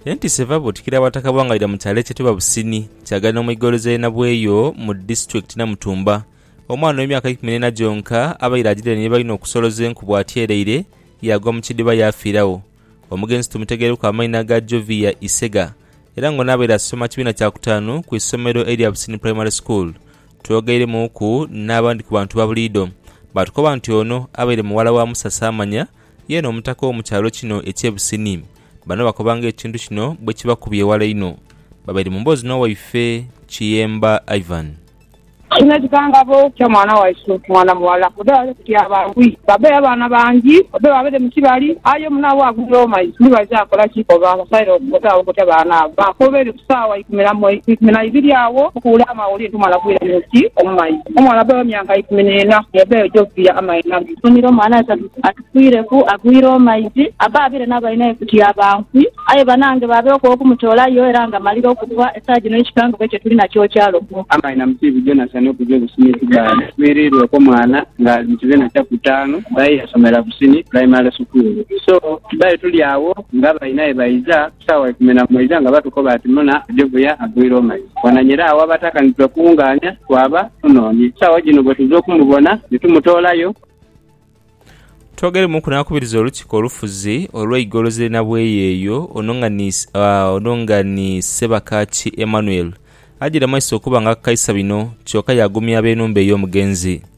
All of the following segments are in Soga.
Entiisa eva Butikiro Abataka b'Wangalira mu kyalo ekyetebwa Busini kyagana omwigolozi ali nabweyo mu disitulikiti Namutumba. Omwana ow'emyaka eikumi n'ena gyonka abaire agiriraine ni baine okusoloza enku bw'atyereire yaagwa mu kidhiba yaafiiragho. Omugenzi tumutegereku amaina ga Jovia Isega era ng'ono abaire asoma kibiina kya kutaanu ku isomero erya Busini Primary School. Twogeiremuuku n'abandi ku bantu babuliidho baatukoba nti ono abaire muwala wa Musa Saamanya Yeena omutaka w'omu kyalo kino eky'e Busini. Bano bakoba ng'ekintu kino bwekibakubye eghala inho. Babaire mu mboozi n'owaife Kiyemba Ivan. Kino ekikangabo kya mwana waisu mwana mughala babe babe kutyaba nkwi babe abaana bangi babe babere mu kibali aye omunaabwe agwire omu maiso ndibaija kola ki koba basaire otaabo kutya baana abo bakoba eri Saawa ikumi na ibiri agho okuwula amawulire nti omwana agwire mu nsi omu maizi. Omwana bbe ow'emyaka ikumi n'ena yabbeyo gye okuviira amaina ge. Funire omwana aye tatufiireku, agwire omu maizi. Abbe abaire n'abainae ku tyaba nfi. Aye banange baabeewo ku okumutola yo era ng'amalire okufa. Esaa gino ekikangabwa kye tuli nakyo kyalo ku. Amaina mu kiibi Jonasani okuja obusini Kibaale afiiriirwe ku mwana ng'ali mu kibiina kya ku taanu aye yasomera Busini Primary School. So Kibaale tuli agho ng'abainae baiza. Saawa ikumi na moja nga batukoba ati muna Joviya agwire omai, wananyera agho abataka nitwekunganya twaba tunonie. Saawa jino bwetuza okumubona nitumutoolayo. Twogeremuku n'akubiriza olukiiko olufuzi olw'eigoloza erina bweyeeyo ono nga ni ono nga ni Ssebakaaki Emmanuel, ajiramaiso okuba nga akaisa bino kyoka yaagumya ab'enhumba ey'omugenzi.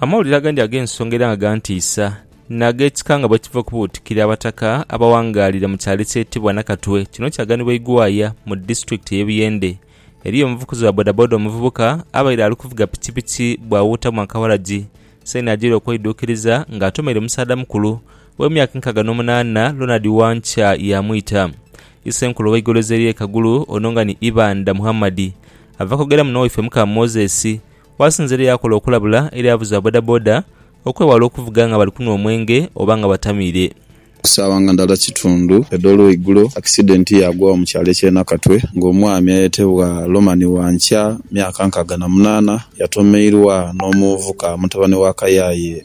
Amawulire agandi ag'ensonga era nga gantiisa, n'ag'ekika nga bwe kiva okubuutikira Abataka abawangaalira mu kyalo ekyetebwa Nakatwe kino kyaganibwa Igwaya mu disitulikiti ey'e Buyende. Eriyo omuvukuzi wa bodaboda omuvubuka abaire ali kuvuga pikipiki bwawuutamu akawaragi Saini ajaire okweiduukiriza ng'atomeire omusaadha mukulu ow'emyaka nkaaga n'omunaana Ronald Wankya yaamwita Isenkulu ow'eigolozi ery'e Kagulu ono nga ni Ibanda Muhammad. Ava kwogeramu n'owaife Mukama Moses. Wasinza era yakola okulabula eri avuzi ba bodaboda okwewala okuvuga nga bali kunhwa omwenge oba nga batamiire. Ku saawa nga ndala kitundu edh'olweigulo, akisidenti yaagwagho mu kyalo eky'e Nakatwe ng'omwami ayetebwa Lomani Wankya, myaka nkaaga na munaana, yatomeirwa n'omuvubuka mutabani wa Kayaye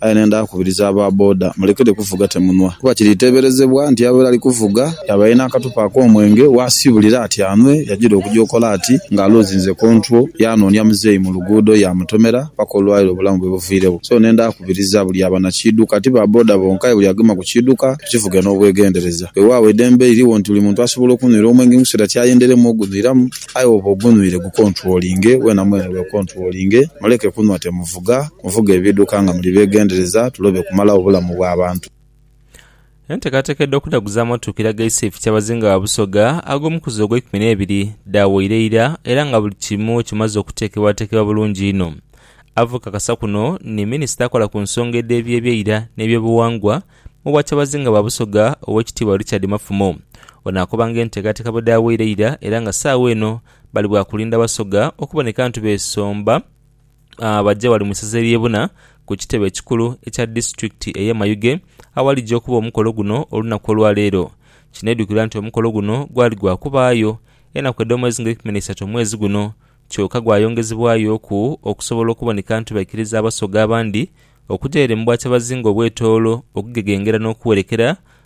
Aye nendha kukubiriza aba boda mulekere kuvuga temunwa kuba kiriteeberezebwa nti abaire ali kuvuga yaba alina akathupa ak'omwenge waasiibulira ati anwe yagira okuja okola ati nga aluuzinze kontwo yaanoonia muzeeyi mu luguudo yaamutomera paka olwalero obulamu bwe buviiregho. So nendha kukubiriza buli aba na kiidhuka ti ba boda bonka aye buli agema ku kiidhuka tukivuge n'obwegendereza. Weewaawo eidembe liriwo nti buli muntu asobola okunwira omwenge mu kiseera ky'ayenderemu ogunwiramu aye woba ogunwire gukontwolinge, wena mwene wekontwolinge muleke kunwa temuvuga. Muvuga nvuga ebiduka nga muli begendereza tulobe kumalagho bulamu bwa bantu. Entekateka edh'okudhaguza amotoka eraga Iseefu Kyabazinga wa Busoga ag'omukuzi ogw'eikumi n'ebiri dhaawaire ira era nga buli kimu kimaze okuteekebwateekebwa bulungi inho. Ava okakasa kuno ni minisita akola ku nsonga edh'eby'ebyeira n'ebyobuwangwa mu bwa Kyabazinga bwa Busoga Owekitiibwa Richard Mafumo. Ono akoba nga entekateka bwe dhaawaire ira era nga saawa eno bali bwakulinda Basoga okuboneka ntu beesomba ah, baje wali mu isaza ery'e Buna ku kitebe ekikulu ekya disitulikiti ey'e Mayuge awalija okuba omukolo guno olunaku olwa leero. Kinedukirwa nti omukolo guno gwali gwa kubaayo enaku edh'omwezi nga eikumi n'eisatu omwezi guno kyoka gwayongezebwayoku okusobola okuboneka nti baikiriza Abasoga abandi okuja ere mu Bwakyabazinga obw'etoolo okugegengera n'okuwerekera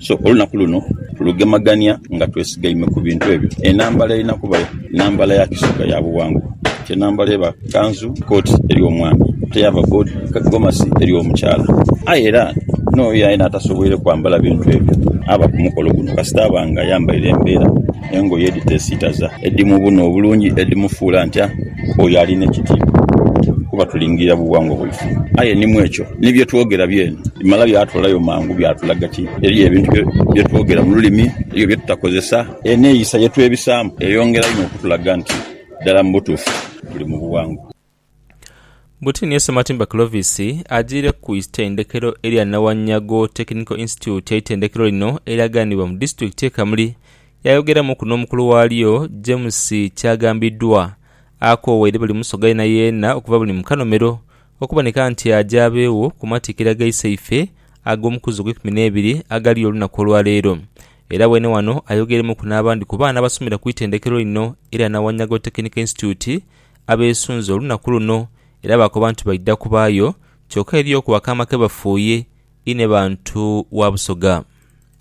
So olunaku luno tulugemagania nga twesigaime ku bintu ebyo. Enambala erina kuba nambala ya kisoga ya buwangwa. Ti enambala eba kanzu, kooti eri omwami, ate yaaba gomasi eri omukyala. Aye era n'oyo yena atasoboire kwambala bintu ebyo aba ku mukolo guno kasita aba nga ayambaire embeera, engoye edhiteesiitaza, edhimubuuna obulungi, edhimufuula ntya. oyo ali n'ekitiibwa, kuba tulingirira bughangwa bwaife. Aye ni mu ekyo, ni bye twogera byene bimala byatoolayo mangu byatulaga ti eriyo ebintu bye twogera mu lulimi, eriyo bye tutakozesa. Eneeyisa ye twebisaamu eyongera inho okutulaga nti ddala mu butuufu tuli mu bughangwa. Butini ye Ssematimba Clovis ajiire ku itendekero erya Nawanyago Technical Institute eitendekero lino eryaganibwa mu disitulikiti ye Kamuli Yaayogeramuku n'omukulu waalyo, Jemusi, kyagambiddwa, akoowa eri buli Musoga yeenayeena okuva buli mu kanomero, okuboneka nti aje abeegho ku matikkira ga iseife ag'omukuzi ogw'eikumi n'ebiri agaliyo olunaku olwa leero. Era weene wano ayogeremuku n'abandi ku baana abasomera ku itendekero lino erya Nawanyago Technical Institute abeesunze olunaku luno era baakoba nti baidha kubaayo kyoka eriyo ku akaama ke bafuuye inhe bantu wa Busoga.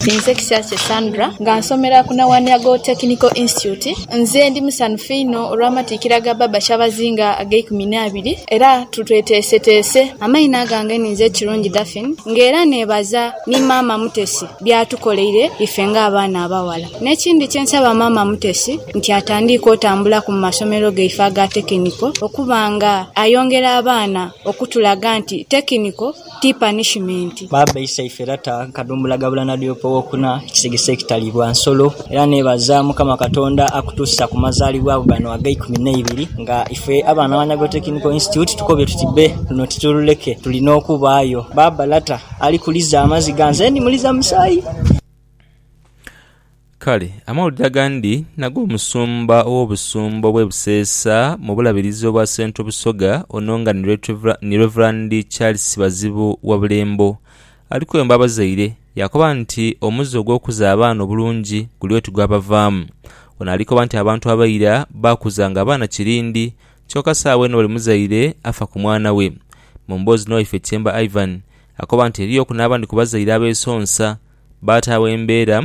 Ninze Kisyakye Sandra nga nsomera ku Nawaniago Technical Institute. Nze ndi musanhufu inho olw'amatikkira ga Baaba Kyabazinga ag'eikumi n'abiri era tutweteeseteese. Amaina gange ninze Kirungi Daphine nga era neebaza ni Maama Mutesi by'atukoleire ife ng'abaana abaghala. N'ekindi kye nsaba Maama Mutesi nti atandiike otambulaku mu masomero gaife aga tekiniko okuba nga ayongera abaana okutulaga nti tekiniko. ti panishimenti. Baaba Isaife Lata Kadumbula Gabula Nadiope Owokuna Ekisigisa Ekitalibwa Nsolo era nebaza Mukama Katonda akutuusa ku mazalibwabo gano ag'eikumi neibiri nga ife abaana ba Nyago Technical Institute tukobye tuti bbe luno titululeke tulina okubaayo Baaba Lata ali kuliza amaziga nze ndi muliza musaayi. Kale amawulire agandi n'ag'omusumba ow'obusumba obw'e Buseesa mu bulabirizi obwa Central Busoga ono nga ni Rev. Charles Bazibu wa Bulembo ali kwemba abazaire yaakoba nti omuze ogw'okuza abaana obulungi guli oti gwabavaamu. Ono ali koba nti abantu abaira baakuzanga abaana kirindi kyoka saawa eno buli muzaire afa ku mwana we. Mu mboozi n'owaife Kyemba Ivan akoba nti eriyoku n'abandi ku bazaire abeesonsa baataagho embeera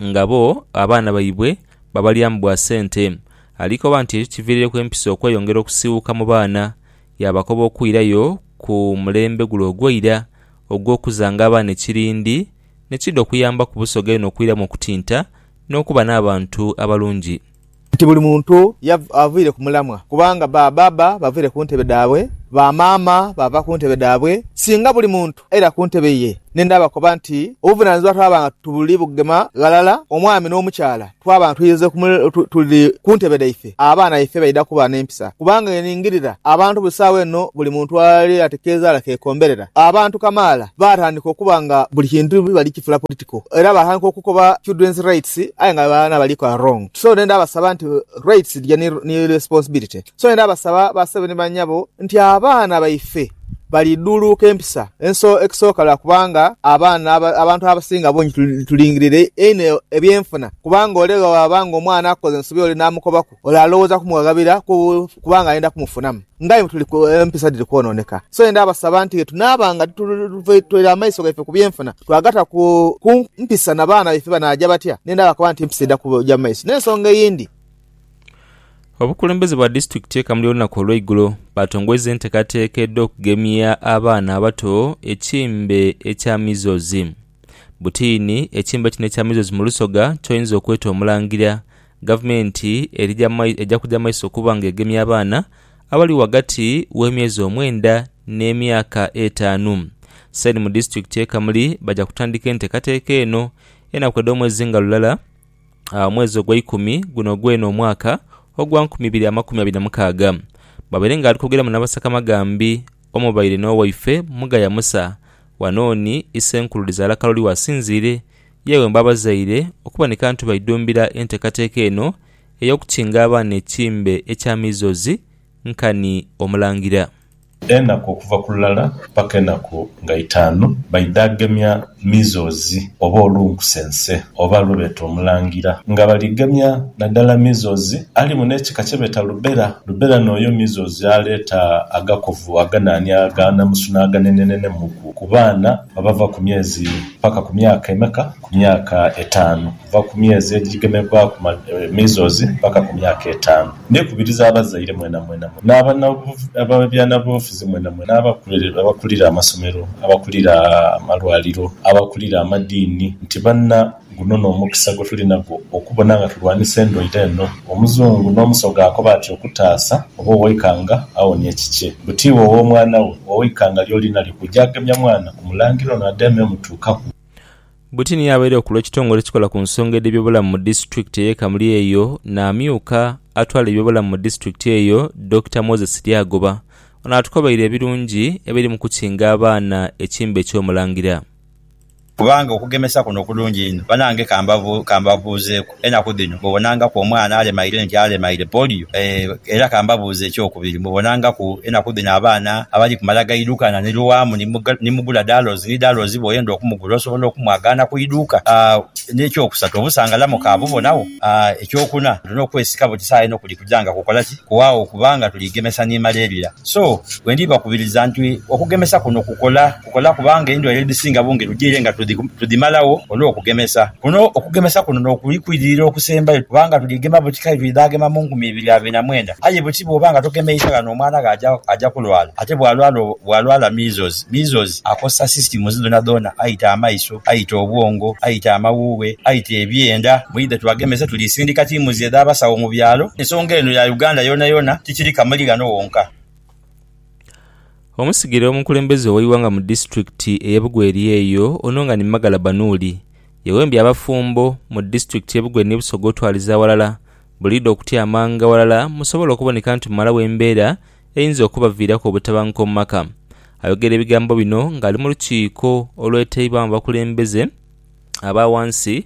nga bo abaana baibwe babalyamu bwa sente. Alikoba nti ekyo kiviirireku empisa okweyongera okusiiwuuka mu baana, yaabakoba okwirayo ku mulembe gule ogw'eira ogw'okuzanga abaana ekirindi ne kidha okuyambaku Busoga yona okwiramu okutinta n'okuba n'abantu abalungi. Nti buli muntu avaire ku mulamwa, kubanga ba bbaabba bavaire ku ntebe dhaabwe, ba maama baava ku ntebe dhaabwe, singa buli muntu aira ku ntebe ye, ni ndaabakoba nti obuvunanizibwa twaba nga tuli bugema ghalala, omwami n'omukyala, twaba nga twidhirize tuli ku ntebe dhaife, abaana baife baidha kuba n'empisa, kubanga eningirira abantu buli saawa eno buli muntu ali ati kezaala kekomberera. Abantu kamaala baatandika okuba nga buli kintu bali kifula political. ku era baghanka okukoba children's rights aye nga abaana baliku arong so nenda basaba nti rights dhija ni responsibility so nenda basaba ba sebo ni banyabo nti abaana baife bali dhuluuka empisa enso ekisoka lwakuba nga abaana abantu abasinga bungi tulingirire inho ebyenfuna kubanga ole bwewaba nga omwana akukoze ensobi ole namukobaku. Ole alowooza kumughaghabira kubanga ayenda kumufunamu. Ng'aye bwe tuli empisa dhiri kwonooneka, so yenda abasaba nti ghe tunaaba nga tutoire amaiso gaife ku byenfuna, twagata ku mpisa na baana baife banaaja batya? Nenda bakoba nti empisa eidha kuja mu maiso. N'ensonga eyindi. Abakulembeze ba disitulikiti e Kamuli olunaku olweigulo baatongweza entekateeka edh'okugemia abaana abato ekimbe ekya Measles. Butiini, ekimbe kino ekya Measles mu lusoga kyoyinza okweta omulangira Gavumenti eja kuja mu maiso okuba nga egemye abaana abali ghagati w'emyezi omwenda n'emyaka etaanu. Saini mu disitulikiti ye Kamuli baja kutandika entekateka eno enaku edh'omwezi nga lulala omwezi ogweikumi guno gwene omwaka ogwa nkumi ibiri amakumi abiri na mukaaga. Bwabaire nga ali kwogeramu n'abasaka Magambi omubaire n'owaife Mugaya Musa wano ni Isenkulu Lizaala Kaloli wasinziire Ye ghemba abazaire okuboneka nti baidhumbira enteekateeka eno ey'okukinga abaana ekimbe ekya measles nkani Omulangira. Enaku okuva ku lulala paka enaku nga itaanu baidhagemya measles oba olunkusense oba lwebeeta omulangira nga baligemya nadala measles alimu n'ekika kyebeeta lubera. Lubera nooyo measles aleeta agakovu aganaania aganamusu n'aganenenene muku ku baana abava ku myezi Paka ku myaka emeka? Ku myaka etaanu, kuva ku myezi ejigemebwaku measles paka ku myaka etaanu. Ndikubiriza abazaire mwenamwena mu n'ababyabufuzi mwenamwena, abakulira amasomero, abakulira amalwaliro, abakulira amadiini nti banna, guno n'omukisa gwetuli nagwo okubona nga tulwanisa endwaire eno. Omuzungu n'omusoga akoba ati okutaasa oba owaikanga awonia ekikye. Buti iwe ow'omwana we, owaikanga ly'oli nalyo kuja agemya mwana ku mulangira ono ade amemutuukaku. Buti niye abaire okulwa ekitongole ekikola ku nsonga edh'ebyobulamu mu disitulikiti ey'e Kamuli eyo n'amyuka atwala ebyobulamu mu disitulikiti eyo Dokita Moses Lyagoba. Ono atukobaire ebirungi ebiri mu kukinga abaana ekimbe eky'omulangira. Kubanga okugemesa kuno kulungi inho. Banange kambabuuzeeku, enaku dhino mubonangaku omwana alemaire nti alemaire polio? Era kambabuuze ekyokubiri, mubonangaku enaku dhino abaana abali kumala gaidhukana ni lwamu ni mugula dalozi ni dalozi bwoyenda okumugula osobola okumwagaana ku iduuka? N'ekyokusatu, obusangalamu kabubonagho? Ekyokuna, tulina okwesika buti saha eno kuli kuja nga kukola ki? Kuwaagho kubanga tuli gemesa ni malaria. So, bwendiibakubiriza nti okugemesa kuno kukola. Tukola kubanga endwaire edhisinga bungi tujiire nga tudhimalagho olw'okugemesa. Kuno okugemesa kuno n'okuli kwidirira okusembayo kubanga tudhigema buti kale twidhagema mu nkumi ibiri a bina mwenda. Aye buti bw'oba nga togemeisa ghano omwana gho aja kulwala. Ate bw'alwala measles, measles akosa systems dhoonadhoona, aita amaiso, aita obwongo, aita amawuughe, aita ebyenda. Mwidhe tubagemese. Tulisindika tiimuzi edh'abasawo mu byalo. Ensonga eno ya Uganda yoonayoona, tikiri Kamuli ghano wonka. Omusigire omukulembeze ow'eighanga mu disiturikiti ey'e Bugwe eri eyo, ono nga ni Magala Banuuli, yewembye abafumbo mu disiturikiti y'e Bugwe ni Busoga otwaliza aghalala buliidho okutyamanga ghalala musobole okuboneka nti mumalawo embeera eyinza okubaviiraku obutabanguko mu maka. Ayogera ebigambo bino ng'ali mu lukiiko olwetaibwamu abakulembeze aba ghansi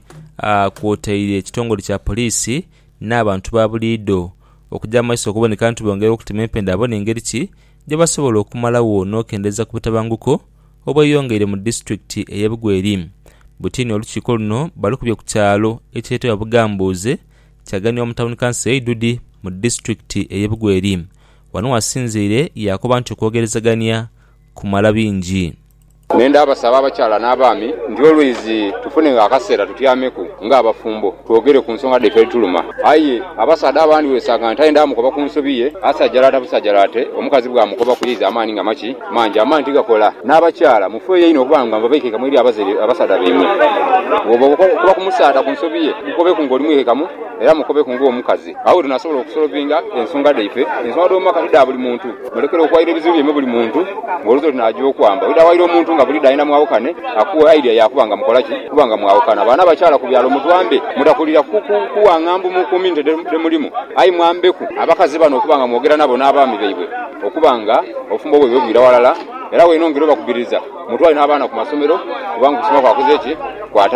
kwotaire ekitongole kya poliisi n'abantu ba buliidho okuja mu maiso okuboneka nti bongera okutema empenda babone ngeri ki gyebasobola okumalagho n'okendeza ku butabanguko obweyongeire mu disitulikiti eye Bugweri. Butini olukiiko luno balukubye ku kyalo ekyetebwa Bugambuuze kyaganibwa mu tawuni kanso ye Idudi mu disitulikiti eye Bugweri. Wano wasinziire yakoba nti okwogerezagania kumala bingi. Nhenda abasaba abakyala n'abaami nti olwizi tufunegho akaseera tutyameku nga abafumbo twogere ku nsonga dhaife edhituluma. Aye abasaadha abandi wesanga nti aye ndaamukoba ku nsobi ye, asajalaata busajalaate, omukazi bwamukoba kuyeiza amaani nga maki mangi amaani tigakola. N'abakyala mufeeyo inho okuba nga baikaikamu eri abasaadha baimwe. Bwooba okoba ku musaadha ku nsobi ye, mukobeku ng'oli mwiikaikamu era mukobeku ng'omukazi. Agho tunaasobola okusolovinga ensonga dhaife, ensonga dh'omu maka ti dha buli muntu. Mulekere okuwaira ebizibu byaimwe buli muntu, ng'oluusi olwo tunaagya okwamba. Oidha waira omuntu nga buli daina mwawukane, akuwe idea ya kuba nga mukola ki? Kuba nga mwawukana. Baana abakyala ku byalo mutwambe mutakulira ku kuwang'ha mbu mu community dhe mulimu, aye mwambeku abakazi bano okuba nga mwogera nabo n'abaami baibwe okuba nga obufumbo bwaibwe bwira ghalala. Era wenongere obakubiriza mutwale n'abaana ku masomero kubanga okusoma kwakoze ki? Kwatandika.